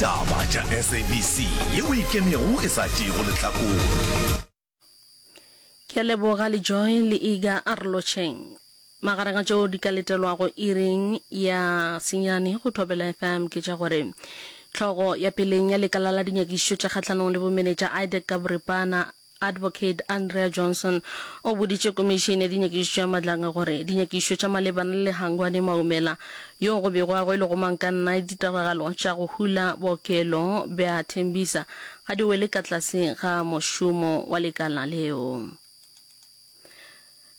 Ditaba tša SABC ye o ikemego e sa tšeego lehlakore. Ke a leboga le Joy le Iga Arolotšheng. Magareng a tšeo di ka letelwago iring ya senyane go Thobela FM ke tša gore Tlhogo ya peleng ya lekala la dinyakišišo tša kgahlanong le bomenetša Idec ka boripana Advocate Andrea Johnson o boditše Komišene ya Dinyakišišo ya Madlanga gore dinyakišišo tša malebana le Lehangwane Maumela yo go bego a rwele go mang ka nna ditiragalo tša go hula bookelo bja Tembisa ga di wele ka tlase ga mošomo wa lekala leo.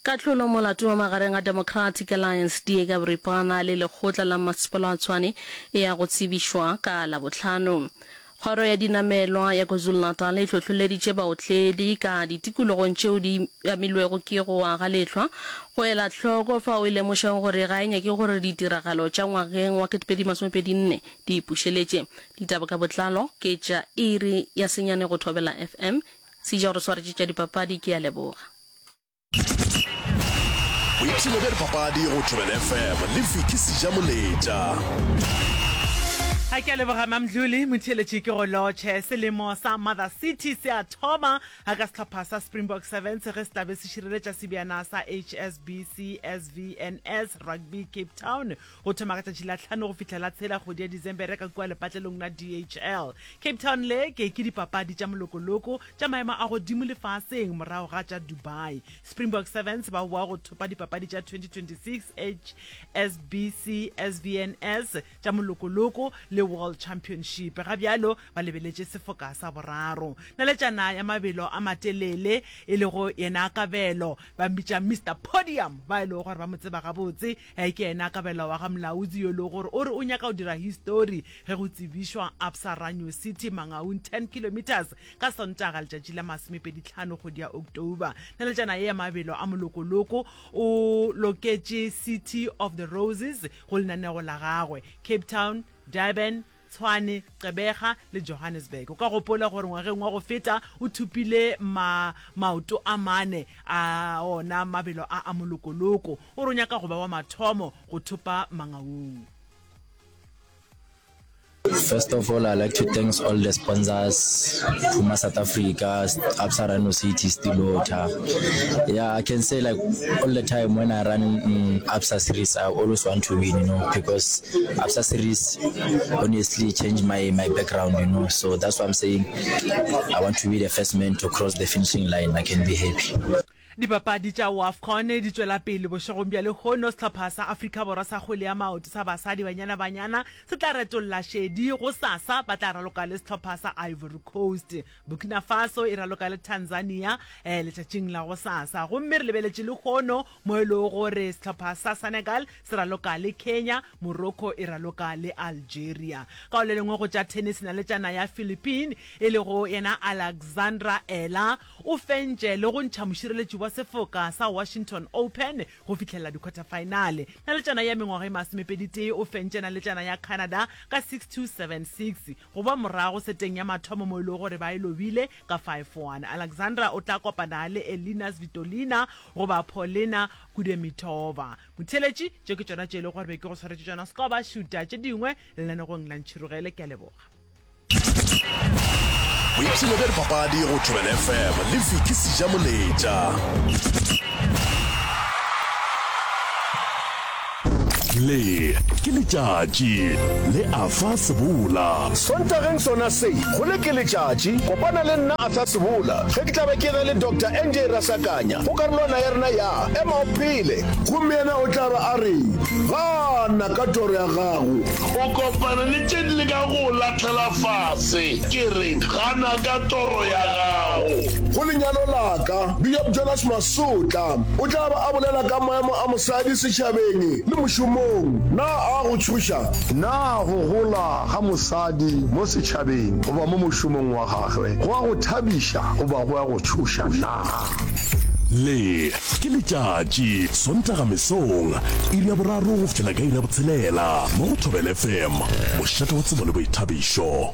Kahlolo molato wa magareng a Democratic Alliance, DA, ka boripana le lekgotla la mmasepala wa Tshwane e ya go tsebišwa ka Labohlano. Kgoro ya dinamelwa ya KwaZulu-Natal e hlohloleditše baotledi ka ditikologong tšeo di amilwego ke go wa ga lehlwa go ela hloko fao e lemošago gore ga e nyake gore ditiragalo tša ngwageng wa 2024 di e pušeletše. Ditaba ka botlalo ke tša Iri ya senyane go Thobela FM. Sija o re swaretše tša dipapadi, ke a leboga. Boipshino bja dipapadi go Thobela FM le Vicky Sija Moletša. A ke a leboga Mamdluli, motheeletši ke go lotšhe. Selemo sa Mother City se a thoma a ka sehlopha sa Springbok Sevens ge se tlabe se šireletša sebjana sa HSBC SVNS Rugby Cape Town. Go thoma ka tšatši la tlhano go fihla la tshela kgwedi ya Disembere ka kua lepatlelong la DHL Cape Town le ke ke dipapadi tša molokoloko tša maemo a godimo lefaseng morago ga tša Dubai. Springbok Sevens ba boa go thopa dipapadi tša 2026 HSBC SVNS tša molokoloko le World Championship. Ga bjalo ba lebeletše sefoka sa boraro. Naletšana ya mabelo a matelele e lego yena Kabelo ba mmitša Mister Podium ba e lego gore ba mo tseba gabotse Ge ke ena kabelo wa ga Mlaudzi yo e lego gore o re o nyaka go dira histori ge go tsebišwa Absa Ranyo City Mangaung 10 kilometres ka Sontaga letšatši la masomepedi tlhano kgwedi ya October. Naletšana ye ya mabelo a molokoloko o loketše City of the Roses go lenaneo la gagwe. Cape Town, Durban, Tshwane, Gqeberha le Johannesburg. O ka gopola gore ngwageng wa go feta o thopile ma, maoto a mane a ona mabelo a a molokoloko. O re o nyaka go ba wa mathomo go thopa mangaung. First of all, I like to thanks all the sponsors, Puma South Africa, Absa Rhino City, Steel Water. Yeah, I can say like all the time when I run um, ABSA series, I always want to win, you know, because ABSA series honestly changed my my background, you know. So that's why I'm saying I want to be the first man to cross the finishing line. I can be happy. dipapadi tša wafcon di tšwela pele bošegong bja lehono sehlopha sa afrika borwa sa kgwele ya maoto sa basadi banyana banyana se tla retolla šedi go sasa ba tla raloka le sehlopha sa ivory coast Burkina Faso e raloka le Tanzania eh, letšatšing la go sasa gomme re lebeletše lehono mo e lego gore sehlopha sa Senegal se raloka le Kenya, Morocco e raloka le Algeria. Ka go le lengwe go tša tennis na le tšana ya Philippine e lego yena Alexandra Ela o fentše le go ntšha mošireletši wa sefoka sa Washington Open go fihlelela dikhwathafaenale. Na le tšana ya mengwaga e masomepeditee o fentše na le tšana ya Canada ka 6-2, 7-6. Go ba morago seteng ya mathomo mo e lego gore ba e lobile ka 5-1. Alexandra o tla kopana le Elina Svitolina goba Polina Kudemitova. Motheeletši, Tše ke tšona tše e lego gore be ke go swaretše tšona skoba šuta tše dingwe lenanegong la Ntšhirogele. Ke a leboga. Boipshino bja dipapadi go Thobela FM le Vicky Sijamoletša. Le ke letšatši le Arthur Sebola. Sontageng sona se, go Le ke letšatši, kopana le nna Arthur Sebola ge ke tla be ke ge le Doctor NJ Rasakanya go karolwana ya rena ya Ema o Phele. Gomme yena o tla ba a reng? Gana ka toro ya gago. O kopana le tše di lekago go o lahlela fase. Ke reng? Gana ka toro ya gago. Go lenyalo la ka, Bishop Jonas Maseko. Sotla o tla ba a bolela ka maemo a mosadi setšhabeng le mošomong. Na a go tšhoša? Na go gola ga mosadi mo setšhabeng goba mo mošomong wa gagwe go a go thabiša goba go a go tšhoša na? Le ke letšatši, Sontaga mesong, iri ya boraro go fihlela ka iri ya botshelela mo go Thobela FM, mošate wa tsebo le boithabišo.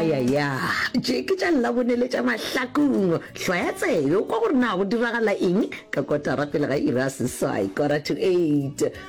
ayaya tše ke tša labone le tša mahlakong hlwaya tsebe o kwa gore na go diragala eng ka kotara pele ga ira seswai kora to eight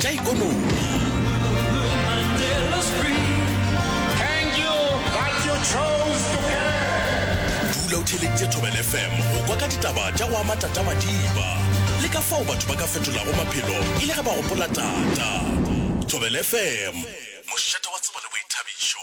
tša ikonomidula o theeleditše thobel fm go kwa ka ditaba tša go ama tatamadiba le ka fao batho ba ka fetolago maphelo e le ge ba gopola tata thobel fm mošate wa tsebo le boithabišo